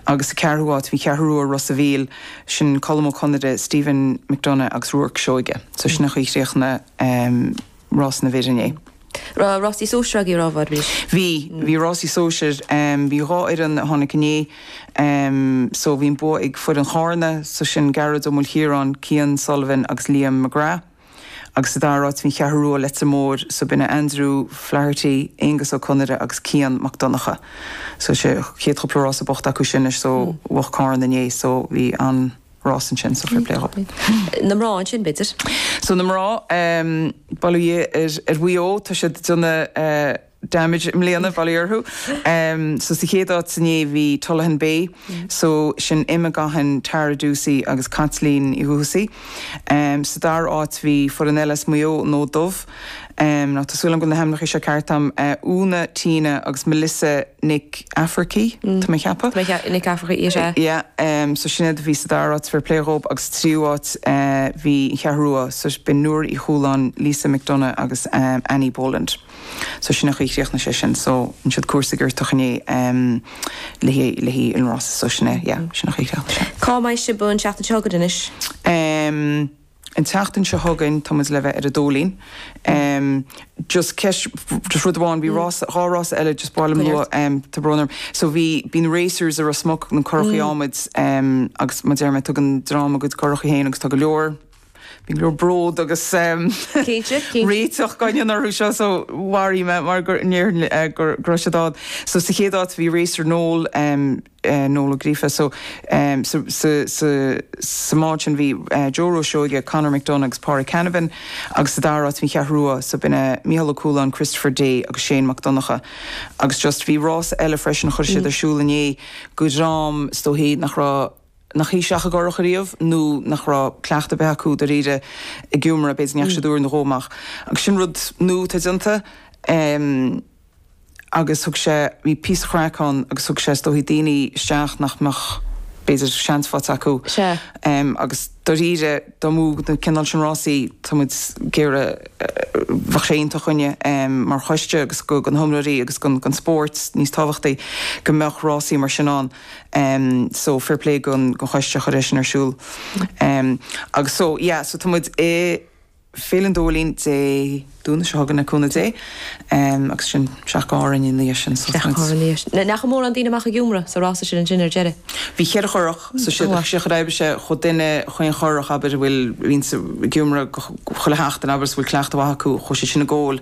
agus sa cheathrú háit bhí Cheathrú Rua, Ros a' Mhíl, sin Colm Ó Conaire, Stephen McDonagh agus Ruairc Seoige. So sin an chaoi a chríochnaigh rás na bhfear. Raibh rásaí sóisir agaibh roimhe arís? Bhí, bhí rásaí sóisir, bhí dhá fhoireann a tháinig inné, so bhí an bua ag foireann Chárna, so sin Gearóid Ó Maoilchiaráin, Cian Sullivan agus Liam McGrath. agus sa dara áit bhí an Cheathrú Rua, Leitir Móir, so b'in a Andrew Flaherty, Aengus Ó Conaire agus Cian Mac Donncha. So is é chéad chúpla rása buachta acu sin leis so bhuach Carna inné so bhí an rás ansin so fair play dhóibh. Na mná ansin b'fhéidir? So na mná, eh, bail ó Dhia ar Mhaigh Eo, tá siad ag déanamh eh, damage i mbliana, bail orthu. So sa chéad áit so inné bhí Tullaghan Bay, so sin Emma Gaughan, Tara Doocey agus Caitlín Ní Dhúthasaigh. Sa dara áit bhí foireann eile as Maigh Eo, An Fód Dubh, now tá súil agam go bhfuil na hainmneacha seo ceart agam, Úna, Tina agus Melissa Nic Eachmharcaigh, tá mé a cheapadh? Tá mé Nic Eachmharcaigh, is ea. Yeah, so sin iad a bhí sa dara áit, fair play dhóibh agus sa tríú áit bhí An Cheathrú Rua, so b'in Nuala Uí Chualáin, Lisa McDonagh agus Annie Boland. So sin an chaoi a chríochnaigh sé sin. So an siad cúrsa ag iarrtach inné le haghaidh le haghaidh an rása. So sin é, yeah, sin an chaoi a chríochnaigh sé. Cá mbeidh sibh an tseachtain seo chugainn anois? Ehm, an tseachtain seo chugainn tá muid le bheith ar an Dóilín. Ehm, just ceist, just rud amháin, bhí rás, dhá rás eile, just ba mhaith liom lua, ehm, tá brón orm. So bhí, bíonn racers i Ros Muc, bíonn currachaí adhmaid, ehm, agus mar a deir mé tugann dream a gcuid currachaí féin agus tá go leor, Bhí go leor bród agus réiteach againn orthu seo so mharófaí mé mara ndéarfainn go raibh siad ann. So sa chéad áit bhí Racer Noel, Noel Ó Gríofa, so sa mbád sin bhí Joe Rua Seoige, Conor McDonagh agus Pádraig Canavan agus sa dara áit bhí an Cheathrú Rua, so b'in Mícheál Ó Cualáin, Christopher Day agus Shane Mac Donncha. Agus just bhí rás eile freisin a chuir siad ar siúl inné, go dhream is dóichí nach raibh, nach isteach i gcurach ariamh nó nach raibh cleachtadh ar bith acu dairíre ag iomramh, b'fhéidir ndeachaigh siad uair nó dhó amach agus sin rud nua atá déanta agus thug sé, bhí píosa craic ann agus thug sé is dóigh daoine isteach nach mbeadh b'fhéidir seans faighte acu agus dairíre dá mbeadh na cineál sin rásaí tá muid ag iarraidh, bheadh sé iontach dhúinne mar choiste agus go, go na hiomróirí agus go, gon spóirt níos tábhachtaí go mbeadh rásaí mar sin ann. so fair play gon choiste a chuir é sin ar siúl agus so yeah so tá muid i Féile an Dóilín Dé Domhnaigh seo chugainn le cúnamh Dé agus ansin isteach go hÁrainn ina dhiaidh sin so tá muid. Isteach go hÁrainn ina dhiaidh sin. Ndeachaigh mórán daoine amach ag iomramh sa rása sin ansin ar deireadh? Bhí cheithre churach so sé an chaoi ar oibrigh sé chuaigh duine i chaon churach abair a bhfuil roinnt ag iomramh chuile sheachtain abair is bhfuil cleachtadh mhaith acu chuaigh siad sin i gcóil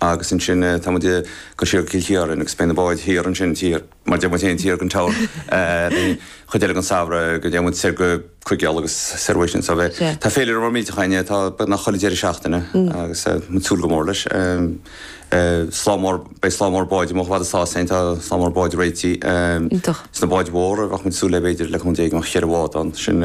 Agus ansin tá muid ag dul siar go Cill Chiaráin agus beidh na báid thiar ansin, taobh thiar mar a deir muid féin, taobh thiar den Cheathrú an chuid eile den samhradh go dtéann muid soir go Cinn Mhara agus soir uaidh sin. So beidh, tá féilire mhór millteach againne, tá beagnach chuile deireadh seachtaine agus tá muid ag súil go mór leis. Slám mór, beidh slám mór báid amuigh i bhfad is tá féin, tá slám mór báid réitithe sna báid mhóra, bheadh muid ag súil le b'fhéidir le cúnamh Dé go mbeadh cheithre bhád ann, sin.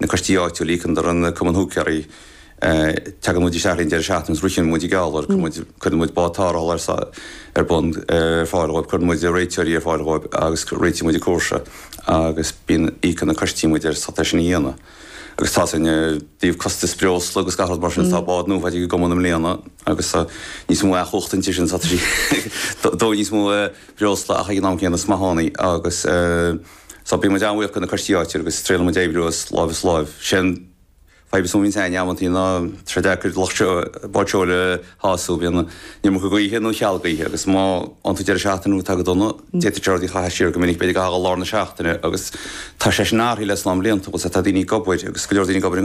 na coistí áitiúla, íocann siad an Cumann Húicéirí, teagann muid isteach ar an deireadh seachtaine agus ritheann muid an geall dóibh, cuireann muid bád tarrthála ar bun ar fáil dhóibh, cuireann muid réiteoirí ar fáil dhóibh agus réitíonn muid an cúrsa agus bíonn, íocann na coistí muid ar é sin a dhéanamh. Agus tá sin, i dtaobh costais breosla agus gach rud mar sin, tá bád nua faighte ag an gCumann i mbliana agus tá níos mó cumhachta inti sin, tá sí, ag dó níos mó breosla ach ag an am céanna is maith ann í agus. So, bíonn muid an-bhuíoch de na coistí áitiúla agus triaileann muid oibriú as láimh is láimh. Sé an fadhb is mó a bhíonn againn amantaí ná tá sé deacair lucht báid seoil a shású. Bíonn an iomarca gaoithe nó cheal gaoithe agus má fhaigheann tú deireadh seachtaine atá go dona, d'fhéadfadh sé rud a chaitheamh siar go minic. B'fhéidir go dtí lár na seachtaine agus tá sé sin athraithe le slám blianta. Bhuel, tá daoine ag obair agus go leor daoine ag obair i ngan.